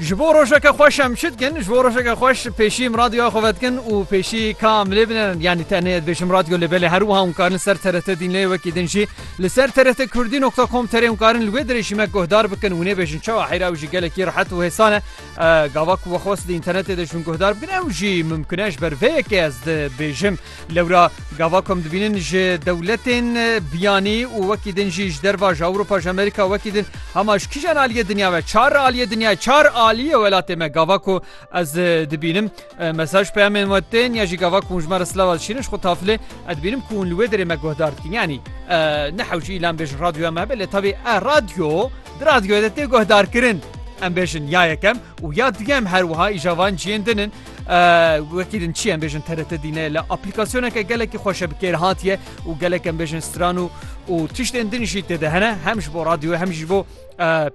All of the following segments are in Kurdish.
Ji bo rojeke xweş em çi dikin? Ji bo rojeke xweş pêşî em radyoya xwe vedikin û pêşî ka em lê binin. Yanî tenê ez bêjim radyo lê belê herwiha hûn karin li ser TRT dînlê wekî din jî li ser TRT Kurdî nokta com terê hûn karin li wê dirê jî me guhdar bikin û nêbêjin çawa heyra ew jî gelekî rehet û hêsan e gava ku wexwest di înternetê de ji min guhdar bikin ew jî mimkun e ji ber vê yekê ez dibêjim Lewra gava ku em dibînin ji dewletên biyanî û wekî din jî ji derva ji Ewropa ji Amerîka wekî din hema ji kîjan aliyê dinya ve çar aliyê dinyayê çar aliyê welatê me gava ku ez dibînim mesaj peyamên we tên ya jî gava ku ji me re silava dişînin ji xwe tafilê ez dibînim ku hûn li wê derê me guhdar dikin yanî nehewcî îlan bêjin radyoya me hebe lê tevî e radyo di radyoye de tê guhdarkirin em bêjin ya yekem û ya duyem her wiha îja van ciyên din in wekî din çi em bêjin TRT dîne li aplîkasyoneke gelekî xweşe bi kêr hatiye û gelek em bêjin stran û û tiştên din jî têde hene hem ji bo radyoye hem jî bo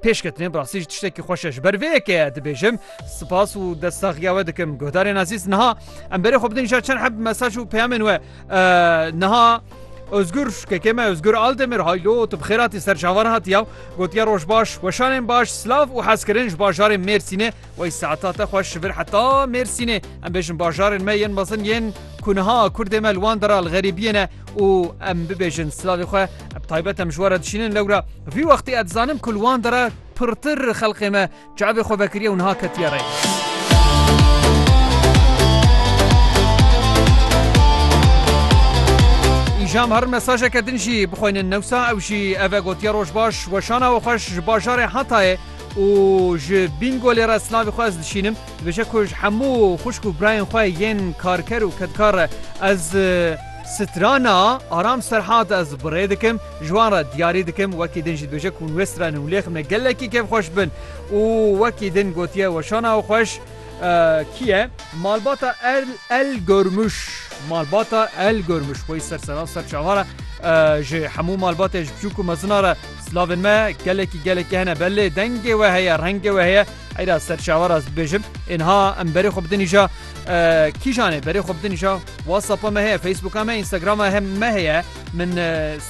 pêşketinê birasî ji tiştekî xweşe ji ber vêyekeye dibêjim spas û destaxiya we dikim guhdarên azîz niha em berê xwe bidin ji çend heb mesaj û peyamên we niha Özgür kekeme Özgür Aldemir haylo tu bixêratî serçavan hatiya gotiya roj baş weşanên baş silav û hezkirin ji bajarê Mêrsînê Wey saeta te xweş ji vir heta Mêrsînê em bêjin bajarên me yên mezin yên ku niha Kurdê me li wan de re li xerîbiyê ne û em bibêjin silavê xwe bi taybet em ji we re dişînin lewra vî wextê ez dizanim ku li wan de re pirtir xelqê me çavê xwe vekiriye û niha ketiye rê. Îjam herin mesajeke din jî bixwînin newsa ew jî ev e gotiye roj baş weşana we xweş ji bajarê Hatayê û ji Bîngolê re silavê xwe ez dişînim, dibêje ku ji hemû xwişk û birayên xwe yên karker û kedkar re ez strana Aram Serhat ez bi rê dikim, ji wan re diyarî dikim, wekî din jî dibêje ku hûn wê stranin û lê xemne gelekî kêfxweş bin û wekî din gotiye weşana xweş. Kî ye malbata El Gormûş? Malbata El Gormûş xweyî ser serran ser çavan e. Ji hemû malbatên ji biçûk û mezinan re silavên me gelekî gelekî hene. Belê dengê we heye, rengê we heye. Heyra ser çavan re ez bibêjim. Ênha em berê xwe bidin îja. Kîjan ê berê xwe bidin îja? WhatsAppa me heye, Facebooka me, Instagrama me heye. Min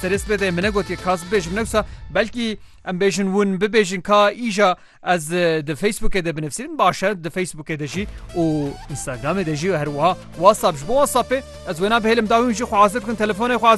serê sibê de min negotiye ka ez bibêjim newsa belkî em bêjin ûn bibêjin ka îja Ez di Facebookê de binivîsim baş e di Facebookê de jî û Instagramê de jî û herwiha WhatsApp ji bo WhatsAppê ez wêna bihêlim dawî hûn jî xwe hazir bikin telefonê xwe hazir